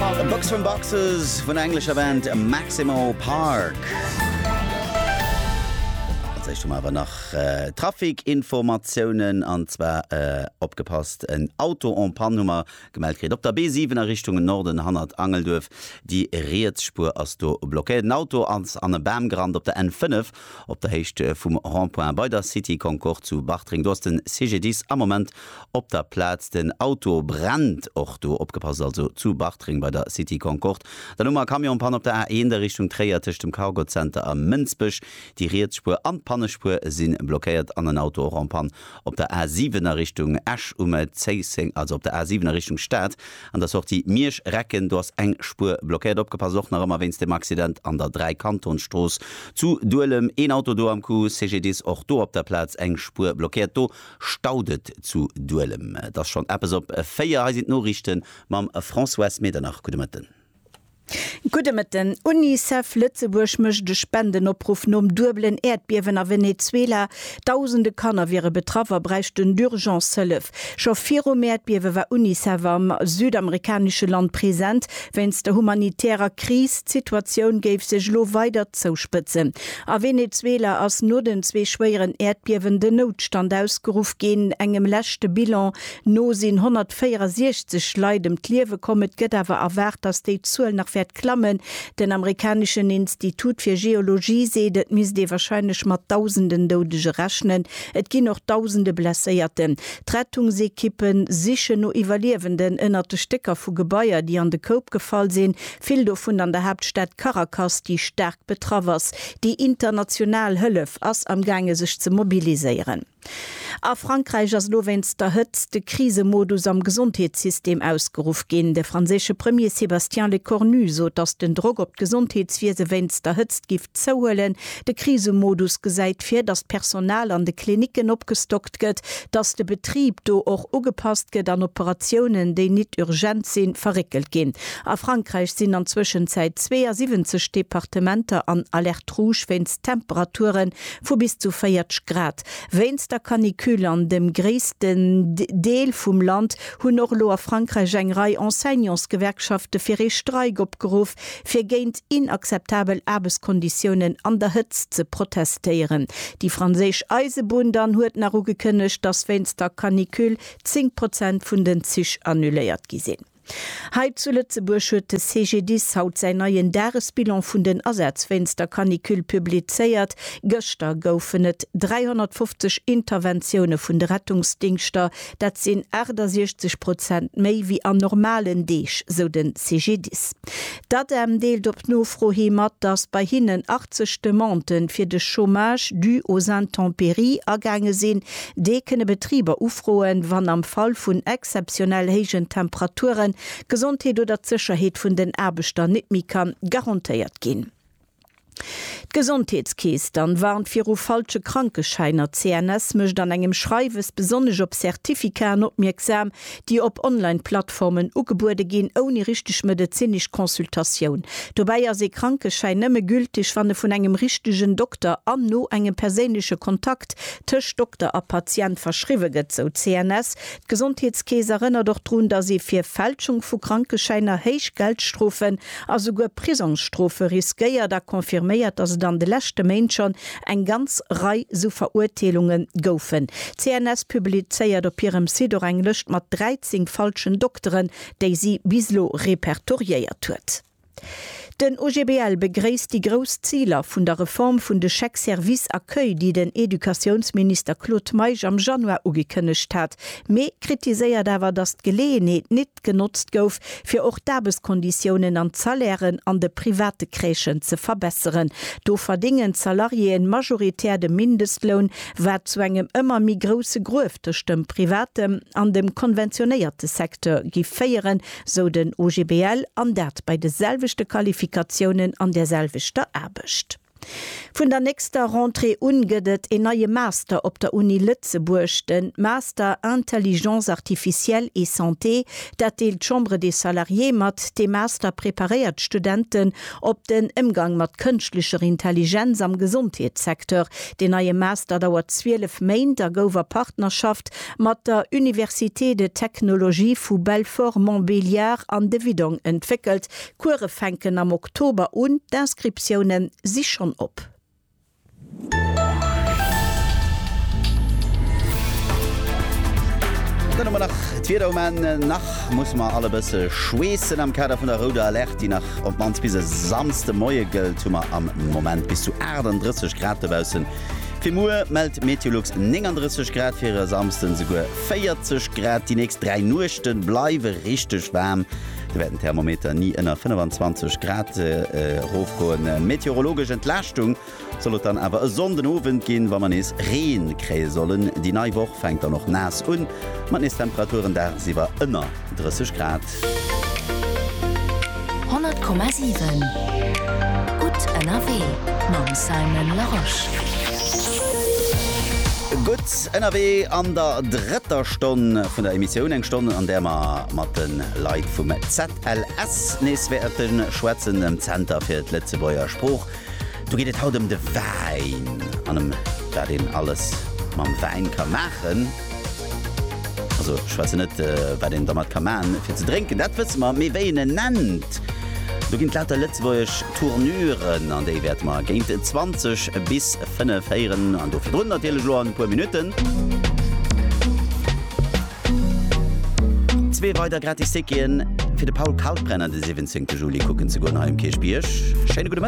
A Box From Boxes vun der englescher Band Maximo Park. Als éischt hu mer awer nach Trafikinformatiounen, an zwar, opgepasst, en Auto en panne hu mer gemellt kritt op der B7 a Richtung Norden hannert Angelduerf. Déi riets Spuer ass do blockéiert. En Auto ass an e Bam gerannt op der N5. Op der Héicht vum Rond-point bei der City Concorde zu Bartreng, do ass den CGDIS am Moment op der Plaz. Den Auto brennt och do. Opgepasst also zu Bartreng bei der City Concorde. Dann hu mer Camionspann op der A1 a Richtung Tréier tëscht dem Cargo Center a Mënsbech. Déi riets Spuer an d'Pannespuer si blockéiert an en Auto och en Panne Op der A 7 a Richtung Esch um Zéisseng, also op der A 7 a Richtung Stad an der Sortie Miersch, Recken, do ass eng Spuer blockéiert. Opgepasst och nach ëmmer wéinst dem Accident an der Dräikantonsstrooss zu Duelem, een Auto do am Coup. CGDIS, och do op der Plaz eng Spuer blockéiert, do staut et zu Duelem. Et ass schonn eppes op 4. Hei sinn d'Noriichte mam Françoise Medernach. Gudde Mëtten. Gudde Mëtten. Unicef Lëtzebuerg mécht e Spendenopruff nom duebelen Äerdbiewen a Venezuela. Dausende Kanner wiere betraff a bräichten d'Urgence Hëllef. Scho virum Äerdbiewe war Unicef am südamerikanesche Land present. Wéinst der humanitärer Kris, d'Situatioun géif sech elo weider zouspëtzen. A Venezuela ass no den zwee schwéieren Äerdbiewen den Noutstand ausgeruff ginn. Engem leschte Bilan No sinn 164 Leit ëm d'Liewe komm. Et gëtt awer erwaart, datt déi Zuel nach wäert klammen. Den amerikaneschen Institut fir Geologie seet, et misst ee warscheinlech mat Dausenden Doudege rechnen. Et ginn och Dausende Blesséierten. D'Rettungsekippe sichen no Iwwerliewenden ënnert de Stécker vu Gebaier, déi an de Koup gefall sinn, vill dovun an der Haaptstad Caracas, déi staark betraff ass. Déi international Hëllef ass amgaange sech ze mobiliséieren. A Frankräich ass elo wéinst der Hëtzt de Krisemodus am Gesondheetssystem ausgeruff ginn. De franséische Premier Sébastien Lecornu sot, datt den Drock op d'Gesondheetswiese wéinst der Hëtzt giff zouhuelen. De Krisemodus gesäit vir, datt d'Personal an de Klinicken opgestockt gëtt, datt de Betrib do och ugepasst gëtt an Operatiounen, déi nit urgent sinn, verréckelt ginn. A Frankräich sinn an Zwëschenzäit 72 Departementer an Alerte rouge wéinst Temperature vu bis zu 40 Grad. Wéinst der Canicule an dem gréissten Deel vum Land hunn och elo a Frankräich eng Rei Enseignantsgewerkschafte fir ee Streik opgeruff, fir géint inakzeptabel Aarbechtskonditiounen an der Hëtzt ze protestéieren. Déi franséisch Eisebunn dann huet nach ugekënnegt, dass wéinst der Canicule 10 Prozent vun den Zich annuléiert gi sinn. Hei zu Lëtzebuerg huet de CGDIS haut säin neien Dagesbilan vun den Asätz wéinst der Canicule publizéiert. Gëschter goufen et 350 Interventioune vun de Rettungsdingschter. Dat sinn 68 Prozent méi wéi an normalen Deeg, sou den CGDIS. D'ADEM deelt op Nofro hi mat, datt bei hinnen 80 Demandë fir de Chômage dû aux intempéries agaange sinn. Dee kënne Betriber ufroen, wann am Fall vun exzeptionell héijen Temperaturen d'Gesondheet oder d'Sécherheet vun den Aarbechter net méi ka garantéiert ginn. D'Gesondheetskeess dann warnt viru falsche Krankeschäiner. D'CNS mécht an engem Schreiwes besonnesch op Certificaten opmierksam, déi op Online-Plattformen ugebuede ginn, ouni richteg medezinesch Consultatioun. Dobäi ass ee Krankeschäin nëmme gülteg, wann e vun engem richtegen Dokter an no engem perséinleche Kontakt tëscht Dokter a Patient verschriwwe gëtt, sou d'CNS. D'Gesondheetskeess erënnert och drun, datt ee fir Fälschung vu Krankeschäiner héich Geldstrofen a souguer Prisongsstrofe riskéiert a confirméiert, datt et an de leschte Méint schonn eng ganz Rei sou Verurteelunge goufen. D'CNS publizéiert op hirem Site och eng Lëscht mat 13 falschen Dokteren, déi si bis elo repertoriéiert huet. Den OGBL begréisst déi grouss Ziler vun der Reform vun de Chèques services accueil, déi den Educatiounsminister Claude Meisch am Januar ugekënnegt hat, mee kritiséiert awer, datt d'Geleeënheet nit genotzt gouf, fir och d'Aarbechtskonditiounen an d'Salairen an de private Crèchen ze verbesseren. Do verdingen d'Salariéeën majoritär de Mindestloun, wat zu engem ëmmer méi grousse Gruef tëscht dem privatem an dem konventionéierte Secteur giff féieren, sou den OGBL, an dat bei de selwechte Qualifikatiounen an der selwechter Aarbecht. Vun der nächster Rentrée un gëtt et een neie Master op der Uni Lëtzebuerg, de Master Intelligence artificielle et santé. Dat deelt d'Chambre des Salariés mat. Dee Master preparéiert d'Studenten op den Émgang mat kënschtlecher Intelligenz am Gesondheetssecteur. Deen neie Master dauert 12 Méint a gouf a Partnerschaft mat der Université de Technologie vu Belfort-Montbéliard an de Widong entwéckelt. D'Kuere fänken am Oktober un, d'Inscriptioune si schonn op. Dann hu mer nach d'Wieder um Enn. Nach musse mer all e bësse schweessen. Am Kader vun der rouder Alerte, déi nach op d'mannst bis e Samsdemoie gëllt, hu mer am Moment bis zu 38 Grad dobaussen. Fir muer mellt d'Meteolux 39 Grad, fir e Samsden esouguer 40 Grad. Déi nächst 3 Nuechte bleiwe richteg waarm, do wäert den Thermometer ni ënner 25 Grad erofgoen. Meteorologesch Entlaaschtung soll et dann awer e Sonnden Owend ginn, wa mer nees Ree kréie sollen. Déi nei Woch fänkt dann och naass un, mat nees Temperaturen daagsiwwer ënner 30 Grad. 100,7 Gutt ënnerwee mam Simon Larosche. Gutt ënnerwee an der drëtter Stonn vun der Emissioun. Eng Stonn, an där mer mat de Leit vum ZLS nees wäerte schwätzen, dem Zenter fir d'Lëtzebuerger Sprooch. Do geet et haut ëm de Wäin an ëm wat een alles mam Wäin ka maachen. Also ech schwätzen net wat een dermat ka man fir ze drénken, dat wësse mer, mee wéi een en nennt. Do ginn et lauter lëtzebuergesch Tournuren an déi wäerte mer géint 20 bis 5 héieren an do virdrun natierlech elo an e puer Minutten. Zwee weider gratis Ticketen fir de Paul Kalkbrenner de 17 Juli kucken ze goen hei um Kierchbierg. Schéine gudde.